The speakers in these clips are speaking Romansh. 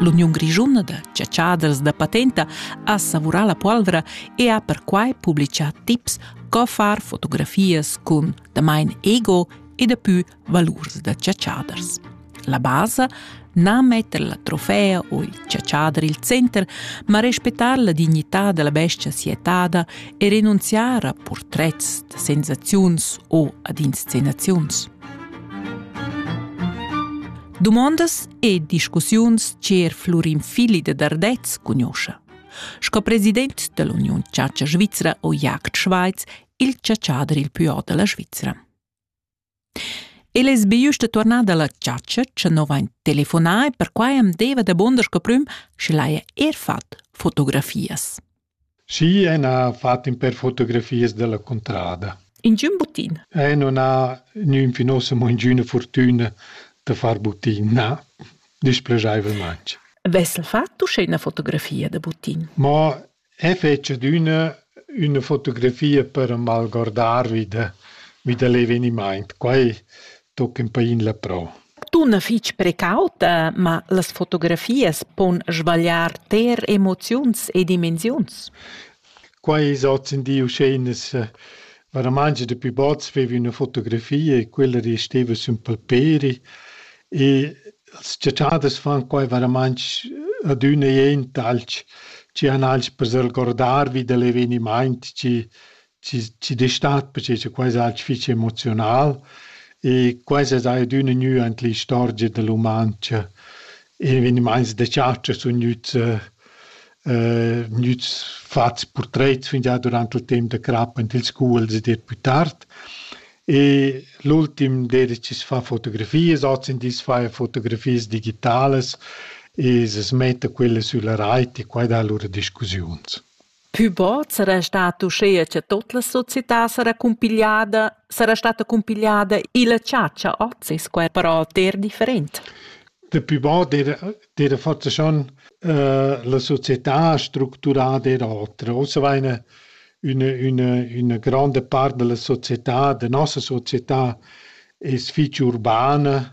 L'Uniun grischuna da chatschaders da patenta ha savurà la polvra e ha perquai publitgà tips co far fotografias cun damain ego e dapü valurs da chatschaders. La basa na metter la trofea o il chatschader il center, ma respettar la dignità della bestia sietada e renunziare a portrets da sensaziuns o ad inscenaziuns. Dumondas e discussiuns cher Flurin Fili de Dardez cugnoscha. Sco president dell'Union Chatscha Svizzera o Jagd Schweiz, il ciaciader il più alto della Svizzera. El es be giusto tornada alla chatscha, che no vain telefonà e per quai am deva da bonder sco prüm, sche l'haja er fat fotografias. Schi en ha fat in per fotografias della contrada. Ingiün buttin? Eh, non ha nügn fin ussa mo ingiüna fortüna da far buttin, na, displegaivelmaing. Vessel fat uschè üna fotografia da buttin? Mo e fece d'üna üna fotografia per malguardarvi da vi da l'evenimaint. Quai Toca in pain la prau. Dunna fitg precauta, ma las fotografias pon svagliar ter emoziuns e dimensiuns. Quai es hozindi uscheinas varamanga da pü bod veva üna fotografia e quella resteva sün palperi e las chatschadas fan quai varamang adüna jent alch chi han alch per s'algordar vi da l'evenimaint chi ci, ci destat perché che quai è fitg emozional e quai è adüna gnü ant l'istorgia da l'umancha e evenimaints da chatscha sun gnüts eh, gnüts fats purtrets fingià durant il temp da crap ant ils scuols ed eir plü tard e l'ultim d'eira chi's fa fotografias, hozindi as faja fotografias digitalas e s'metta quella sülla rait e quai dà lura discussiuns. Pü bod sarà stat uschea cha tot la società sarà cumpigliada, sarà stata cumpigliada illa chatscha hoz es quai però ter different. Dapü bod d'eira d'eira fatta schon la società structurada eir otra. Ussa vaina üna üna üna granda part da la società, da nossa società es fich urbana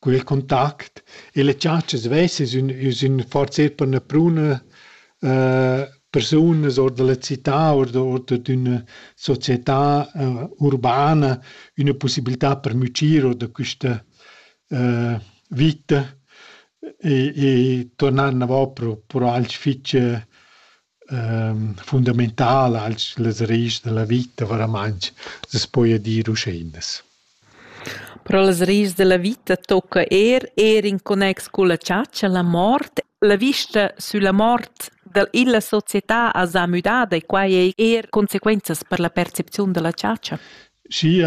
Quel contact e le tschatschas vesses ün sün forsa per üna pruna eh persunas or da la città or da or d'üna società eh urbana üna pussibiltà per mütschir or da quista eh vita e e turnar inavò pro pro alch fich fundamentala als las reis da la vita varamaing, s'es poja dir uscheinas. Però las reis da la vita tocca eir eir in connex culla chatscha, la mort. La vista sülla mort dal illa società as ha müdada e quai ei eir consequenzas per la percepziun da la chatscha? Sia